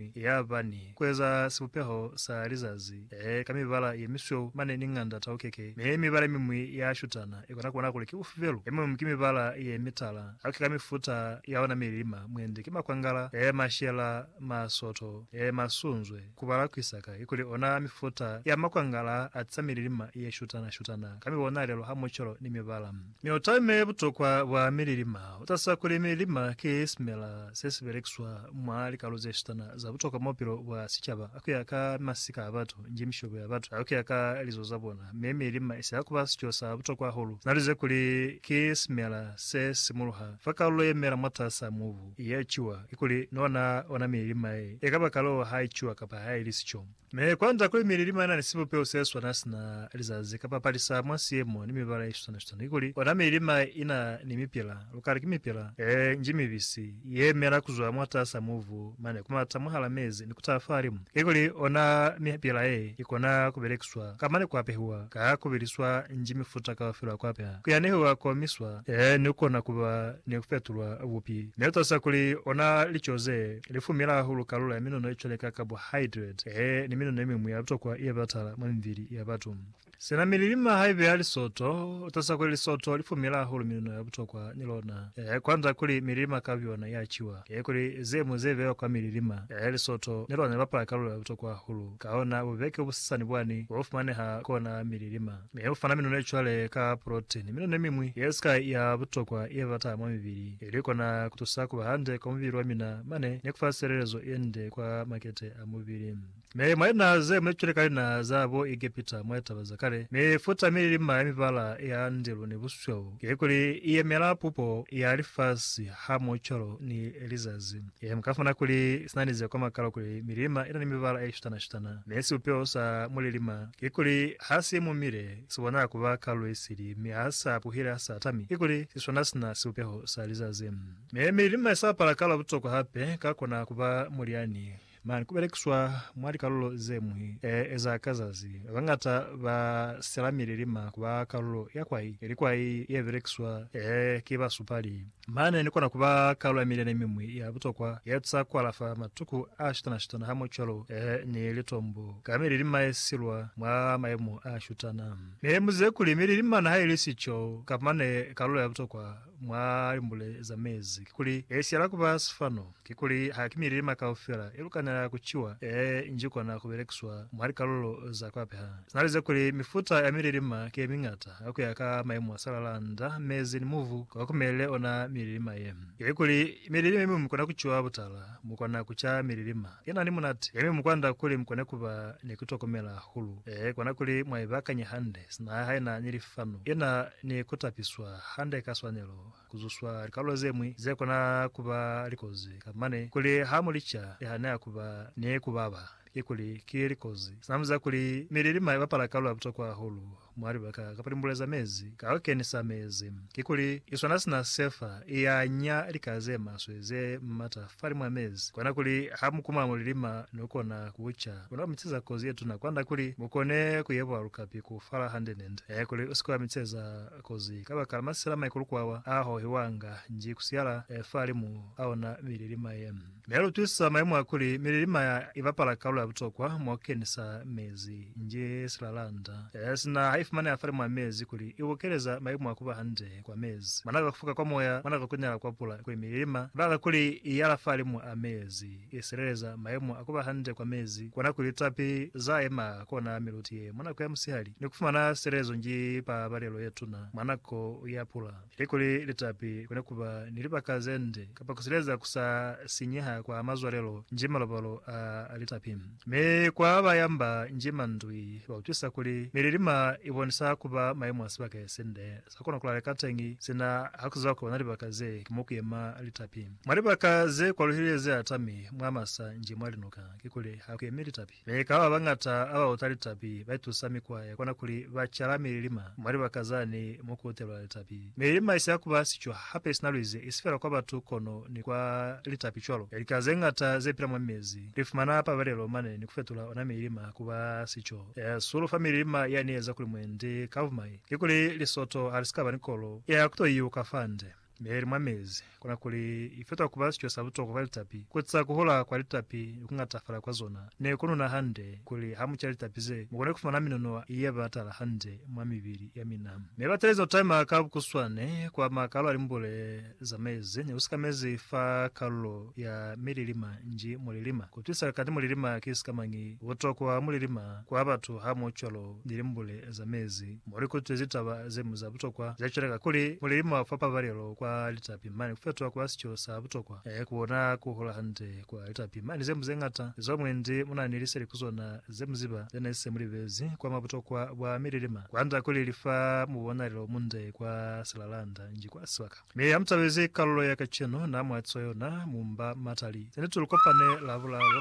mi ya ba ni kueza sibupeho sa lizazi ee ka mibala ye misweu mane ni nganda taukeke, mi mibala yemimwi ya shutana ikona kubona kuli ki ufi felu. Yemum ki mibala ye mitala, haki ka mifuta ya ona mililima, mwendi ki makwangala ee mashela, masoto ee masunzwe, kubala kuisaka ikuli ona mifuta ya makwangala a tisa mililima ye shutana-shutana ka mibonalelo ha mucolo ni mibala. Mi utame butokwa bwa mililima. Utasa kuli mililima ki simela sesibelekiswa mwa likalo zesitana za butokwa mwa bupilo bwa sicaba kuya ka masika abatu, njimishobo ya batu, ni kuya ka lizo zabona. Mi mililima isi hakuba sico sa butokwa hahulu. Naluze kuli ki simela se simuluha fa kalulo yemela mwatasa mubu, ye ciwa. Kikuli, ni ona ona mililima ye, ekaba kalulo ha iciwa kapa haili sico. Mi kwa nza kuli mili limana ni sibupeho se swana sina lizazi kapa palisa mwa siemo ni mibala ye swana-swana, kikuli ona mili lima ina ni mipila, lukali ki mipila ye nji mibisi, ye mela kuzwa mwatasa mubu mane kumata mwahala mezi ni kutaha fahalimu, kikuli ona mipila ye ikona kubelekiswa kamane kuapehiwa ka kubiliswa nji mifuta kaufela ya kuapeha, kuyanehiwa, kuomiswa, ni kukona kuba ni kufetulwa bupi, mi utasa kuli ona lico ze Lifumi la hahulu kalulo ya minono ye cwale ka carbohydrate he ni minono ye miñwi ya butokwa ye batala mwa mibili ya batu. Sina mi lilima haibe ya lisoto, utasa kuli lisoto lifumi la hahulu minono ya butokwa ni lona. He kwanda kuli mi lilima ka byona ya ciwa. He kuli ze ñwi ze bewa kwa mi lilima. He lisoto ni lona li bapala kalulo ya butokwa hahulu. Kahona bubeke busasani bwani bo bufumaneha kona mi lilima. Mi u fana minone cwale ka protein, minone miñwi ye sika ya butokwa ye bata mwa mibili, ili kona kutusa kuba hande kwa mubili wa mina mane ni kufa silelezo yende kwa makete a mubili. Mi mwa linaha ze mune cwale ka linaha za bo Egepita mwa litaba za kale, mifuta mililima ya mibala ya ndilu ni busweu, kikuli iyemela pupo ya lifasi, hamoho cwalo ni lizazi. Ee, mu ka fumana kuli si na ni ze koma kalo kuli milima i na ni mibala ye shutana-shutana, mi sibupeho sa mulilima kikuli ha si mumile si bonaha ku ba ka luisili mi ha sa puhile ha sa tami, kikuli si swana si na sibupeho sa lizazi. Mi mililima i sa pala kalo butokwa hape ka kona ku ba mulyani mane ku belekiswa mwa likalulo ze ñwi ee za ka zazi. Ba bañata ba sela mililima ku ba kalulo ya kwai, ili kwai ye belekiswa ee ki basupali. Mane ni kona ku ba kalo ya milyani ye mimwi ya butokwa ye tusa ku alafa matuku a shutana-shutana hamwecwalo ni litombo ka mililima ye silwa mwa mayemo a shutana. Ne ni buzize kuli mililima mana ha i li sico kapa mane kalo ya butokwa mwa limbule za mezi kikuli ye siyala ku ba sifano. Kikuli ha ki milima kaufela ye lu kanela ku ciwa ye nji kona ku belekiswa mwa likalulo za ku apeha. Na lize kuli mifuta ya mililima ki ye miñata ku ya ka maimu a salala, nda, mezi, ni mubu kwa kumelile ona mililima ye. Ili kuli mililima ye mi mu kona ku ciwa butala, mu kona ku ca mililima ye na ni munati ye mi mu kwanda kuli mu kone ku ba ni ku tokomela hahulu. Ee, kona kuli mwa ibakanya hande, sina ha i na ni lifanu, i na ni ku tapiswa hande ka swanelo, ku zuswa likalulo ze ñwi ze kona ku ba likozi ka mane kuli ha mu li ca, li haneha ku ba ni ku baba, kikuli ki likozi. Sinamu za kuli mililima i bapala kalulo ya butokwa hahulu mwa libaka kapa limbule za mezi ka ku kenisa mezi, kikuli i swana sina se fa i ya nya lika ze maswe ze m'ata fali mwa mezi, kona kuli ha mu kuma mulilima no kona ku ca, u na mitseza kozi ye tuna kwand'a kuli mu kone ku yebwa lukapi ku fala hande-nende, kuli u si ke wa mitseza. kozi kabakala masela maikulukwawa a hohiwanga nji kusiala fa limu a ona mililima ye. Mi ya lutwisa mayemo a kuli mililima ya ibapala kalulo ya butokwa mwa kukenisa mezi nji silalanda sina ha ifumaneha fa limu a mezi kuli ibukeleza mayemo a kuba hande kwa mezi. Mwanaka kufuka kwa moya, mwanaka kunyala kwa pula kuli mililima ibaka kuli iyala fa limu a mezi. i sileleza mayemo a ku ba hande kwa mezi, kwa nako licapi za yema kona miluti ye mwa nako ya musihali, ni ku fumana silelezo nji pabalelo ye tuna mwa nako ya pula. Ilikuli licapi ku ne ku ba ni libaka ze nde kapa ku sileleza ku sa sinyeha kwa mazwalelo nji malobalo a licapi, mi kwa ba yamba nji mandwi ba utwisa kuli mililima i bonisa ku ba mayemo a sibaka ye si nde Sa kona kulaleka teñi, sina hakuziba kuba na libaka ze ki mo kuyema litapi. Mwa libaka ze kwaluhile ze atami mwa masa nji mwa linuka, kikuli ha kuyemi litapi. Mi ka ba bañata aba uta litapi ba itusa mikwa ya kona kuli ba cala mililima mwa libaka zani mo ku utelwa litapi. Mililima isi ya kuba sicwa hape isina luizi, isi fela kwa batu kono ni kwa litapi cwalo. Lika ze ñata ze pila mwa mezi li fumana pabalelo mane ni ku fetula ona mililima kuba sico. Sulufa mililima yani ye eza kuli mwendi ka bumai. Kikuli lisoto ha li si ka ba ni kolo ya ku to iuka fa nde, mi ha i li mwa mezi, kona kuli i fetwa ku ba sico sa butokwa kwa litapi, ku eza ku hola kwa litapi ni ku ngatafala kwa zona, ni ku nuna hande, kuli ha mu ca litapi ze, mu kone ku fumana minono ye ba tala hande mwa mibili ya mina. Mi ba telezi ku taima ka bukuswane kwa makalo a limbule. zamezi ne lu sikamezi fa kalulo ya mililima nji mulilima. Ku twisa kati mulilima ki sikamañi, butokwa mulilima kwa batu hamucwalo ni limbule zamezi mo li kutwezi taba ze ñwi za butokwa ze cwale ka kuli, mulilima fa pabalelo kwa litapi mane ku fetoha kuba sico sa butokwa, e, ku ona ku hola hande kwa litapi mane ze ñwi ze ñata zo mwendi mu na ni liseli ku zona ze mu ziba ze ne se mu libezi kwa mwa butokwa bwa mililima kwand'a kuli li fa mubonalelo munde kwa silalanda. nji kwa swa ka. Mi ha mutabezi kalulo ya kacenu na mwa cwa yona, mu mba matali. Zanituli kopane Lavulalo.